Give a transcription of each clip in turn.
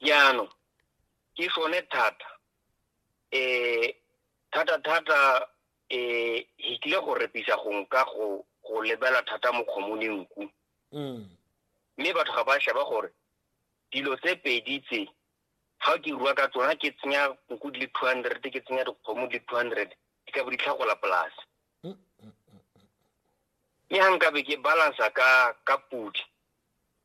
jaanong ke sone thata um thata-thata um e tlile go repisa gong ka go go lebela thata mokgomo le nku mm. mme batho ga ba sheba gore dilo tse pedi tse ga ke rua ka tsona ke tsenya nku di le two hundred ke tsenya dikgomo di le two hundred di ka bo di tlhagola polase mm, mm, mme ga nkabe ke balansa ka ka podi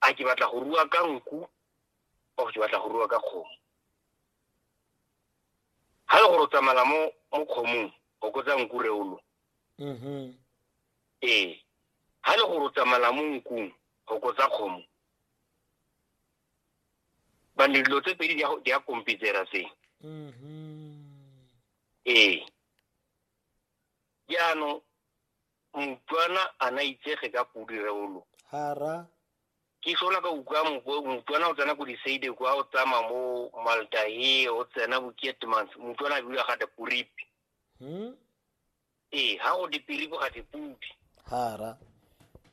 a ke batla go rua ka nku o ke batla go rua ka kgomo ga le gore o tsamala mo mo kgomong o kotsa nku reolo mm-hmm. ee ga le gore o tsamala mo nkung go kotsa kgomo bane dilo tse pedi di ya kompitsera se mm-hmm. ee jaanong motswana a na itsege ka podi reolo hara ke sola ka utlwa motswana o tsena ko diseide kwa o tsama mo maldahe o tsena bo kietmans motswana a biwa ga diporipi hmm? ee ga go dipiripi ga dipodi hara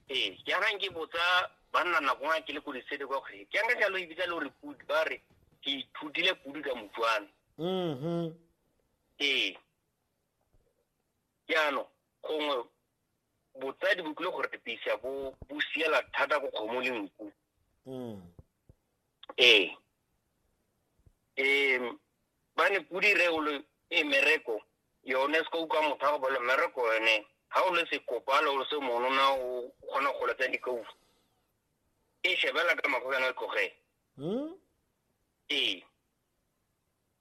ee jaanang ke botsa banna nako nga ke le ko diseide kwa gore ke anka jalo ebitsa le gore podi ba re ke ithutile podi ka motswana mm-hmm. ee jaanong gongwe botsadi bo tlile go repisa bo bo siela thata ko kgomo le nku mm. ee um ba ne pudi reolo e mereko yone se ka utlwa motho a go bolo mereko yone ga o le sekopalo o se monona o kgona go letsa dikaufu e shebela ka mago yana tlogele hmm? ee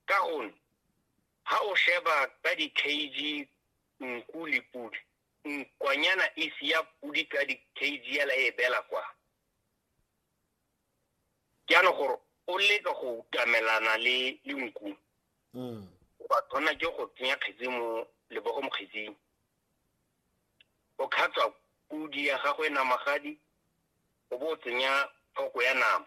ka gonne ha o sheba ka di-kg nku le podi nkwanyana e sia podi ka di-kg ela e bela kwa jaanong gore o leka go utamelana le le nku mm. o ba tshwana ke go tsenya kgetsi mo lebogo mo kgetsing o khatswa podi ya gago e namagadi o bo o tsenya foko ya nama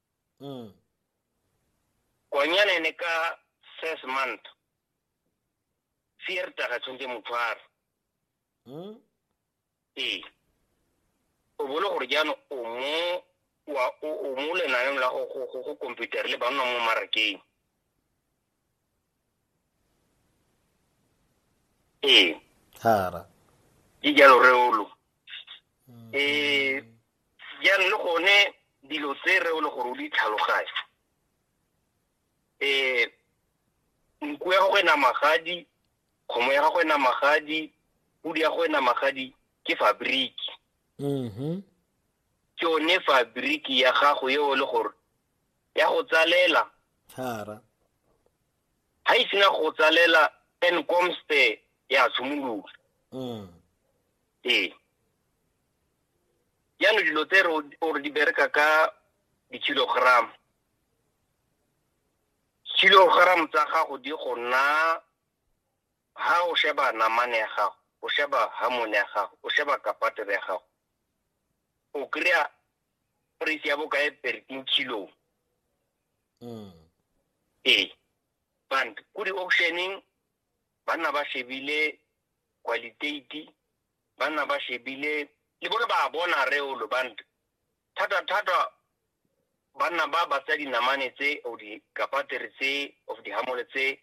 Mm. Konyane ne ka first month. Fierta ga tshwantse motshwaro. Mm. Ee. O bolo gore jaanong o mo wa o mo lenaneng la go go go computer le ba nna mo marakeng. ee thara ke jalo reolo um jaanong le gone dilo tse reolo gore o di tlhaloganye um nku ya gago e na magadi kgomo ya gago e na magadi pudi ya go e na magadi ke fabriki mhm ke yone fabriki ya gago eo le gore ya go tsalela thara ha e sena go tsalela and comste ya tshimolola mm. ee yano dilo tse ore di bereka ka di-kilogram kilogram tsa gago di go nna ha o sheba namane ya gago o sheba hamone ya gago o sheba kapatele ya gago o kry-a price ya bokae per kilo mm. ee band ko di-auctioneng ba nna ba shebile qualitati ba nna ba shebile le bone ba bona reolo band thata-thata ba nna ba batsa dinamane tse o dikapatere tse of dihamole tse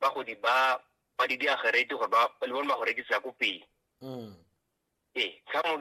ba go di ba ba di diagerete gore ba le bone ba go rekisa ko pele mm. ee tlhamo